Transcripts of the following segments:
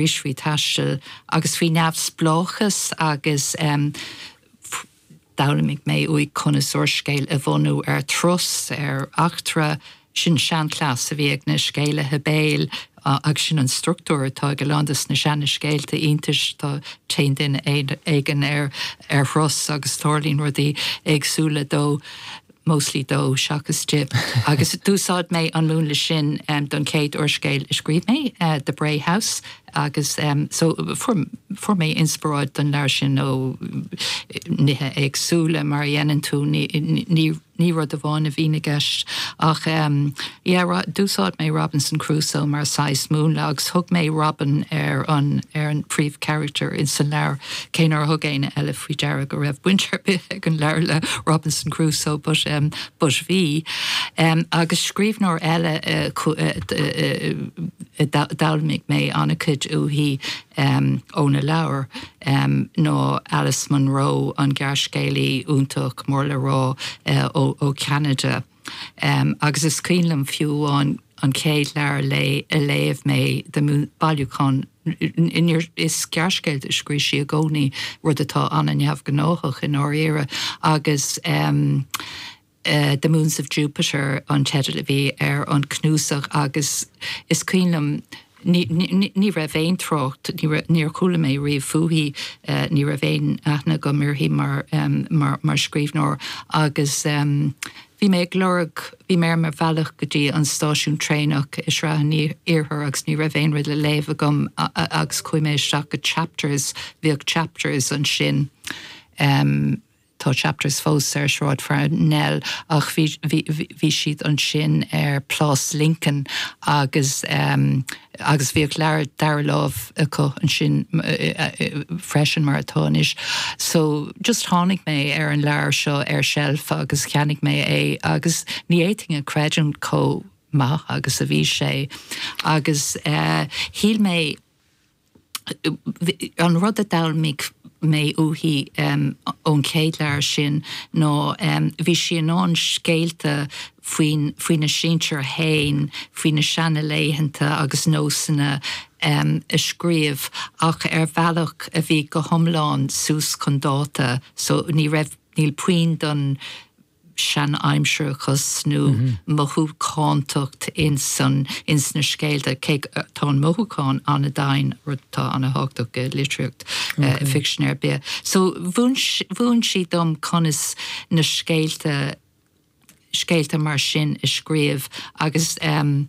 arís faoi thaisteal agus faoi neamhspleáchas agus d'fhoghlaimigh mé uaidh conas úrscéal a bhunú ar thuras, ar eachtra. Sin seanchleas a bhí ag na scéalaithe béil agus sin an structúr atá ag a lán de na seanascéalta iontais. Téann duine éigin ar thuras agus tarlaíonn rudaí éagsúla dó. mostly dó seachas di, agus d'úsáid mé an múnla sin don chéad úrscéal a scríobh mé, The Bray House, agus so fuair mé inspioráid don leabhar sin ó nithe éagsúla, mar a dhéanann tú, ní rud amháin a bhíonn i gceist. Ach yeah, d'úsáid mé Robinson Crusoe mar saghas múnla, agus thug mé Robin ar an príomhcharactar sa leabhar. cé nár thug éinne eile faoi deara go raibh baint ar bith ag an leabhar le Robinson Crusoe, but but bhí. Agus scríbhneoir eile a d'fhoghlaimigh mé ana-chuid uaithi óna leabhar ná Alice Munro, an gearrscéalaí iontach mór-le-rá ó Cheanada. agus is cuimhin liom fiú amháin an chéad leabhar léi a léamh mé de bhailiúchán, níor, is gearrscéalta a scríobh sí i gcónaí, rud atá an-neamhghnách i ndáiríre, agus The Moons of Jupiter an teideal a bhí ar an cnuasach agus is cuimhin liom, Ní raibh aon trácht, níor chuala mé riamh fúithi, ní raibh aon aithne agam uirthi mar scríbhneoir agus bhí mé ag lorg, bhí mé ar mo bhealach go dtí an stáisiún traenach i Sraith an Iarthair agus ní raibh aon rud le léamh agam agus chuaigh mé isteach go Chapters, bhíodh Chapters ansin. Tá chapters fós ar Shráid Pharnell ach bhí bhí siad ansin ar Plás Lincoln agus agus bhíodh leabhair dara láimh acu ansin freisin mar atá anois. So just tháinig mé ar an leabhar seo ar sheilf agus cheannaigh mé é agus ní fhéadfainn a chreidiúint chomh maith agus a bhí sé agus shíl mé, An rud a d'fhoghlaimigh mé uaithi ón chéad leabhar sin ná bhí sí in ann scéalta faoin, faoina sinsir féin, faoina seana-laethanta agus nósanna a scríobh ach ar bhealach a bhí go hiomlán suas chun dáta, so ní raibh, níl puinn den, seanaimsearachas nó mothúchántacht ins na scéalta, cé go tá an mothúchán ana-dhomhain, rud atá ana-thábhachtach i litríocht ficsin ar bith. So mhúin sí dom conas na scéalta, scéalta mar sin a scríobh agus an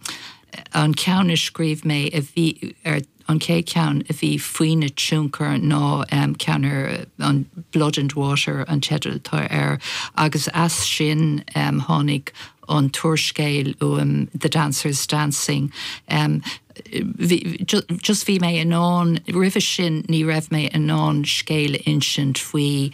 ceann a scríobh mé a bhí ar. An chéad ceann a bhí faoina tionchar ná ceann ar an Blood and Water an teideal atá air agus as sin tháinig an t-úrscéal uaim The Dancers Dancing. Just bhí mé in ann, roimhe sin ní raibh mé in ann scéal a insint faoi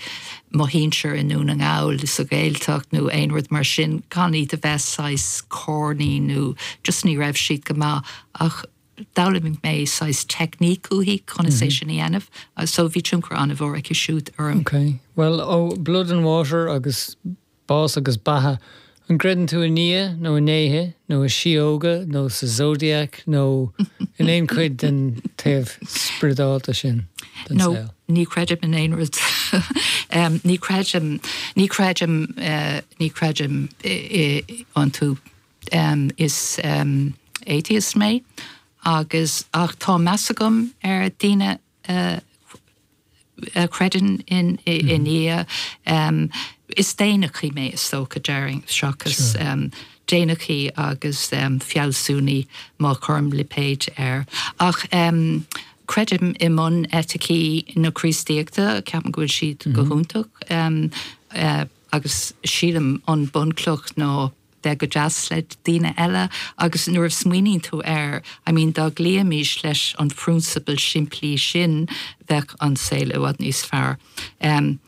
mo mhuintir i nDún na nGall, sa Ghaeltacht nó aon rud mar sin gan iad a bheith saghas corny nó just ní raibh siad go maith ach, D'fhoghlaim mé saghas teicníc uaithi, conas é sin a dhéanamh, so bhí tionchar an-mhór aici siúd orm. Ok. Bhuel, ó Blood and Water agus Bás agus Beatha, an gcreideann tú i nDia, nó i ndéithe, nó i síóga, nó sa Zodiac, nó in aon chuid den taobh spriodálta sin den No, saol? ní chreidim in aon rud. Ní chreidim, ní chreidim, ní chreidim iontu. Is atheist mé agus, ach tá meas agam ar daoine a chreideann i nDia. Is daonnachaí mé is dócha, déarfainn, seachas daonnachaí agus fealsúnaí, má chuirim lipéid air. Ach creidim i mbuneiticí na Críostaíochta, ceapaim go bhfuil siad go hiontach, agus sílim an bunchloch ná bheith go deas le daoine eile agus nuair a smaoiníonn tú air, I mean dá gcloífimis leis an phrionsabal simplí sin bheadh an saol i bhfad níos fearr. Em.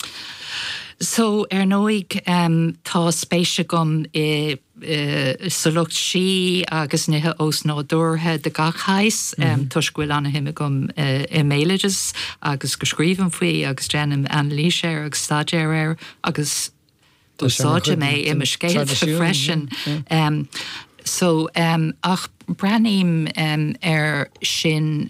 So ar ndóigh em tá spéis agam i eh sa lucht sí agus nithe ósnádúrtha de gach shaghas em toisc go bhfuil an-suim agam eh i mbéaloideas agus go scríobhaim faoi agus déanaim anailís air agus staidéar air agus, Úsáidim é i mo scéalta freisin so ach breathnaím ar sin.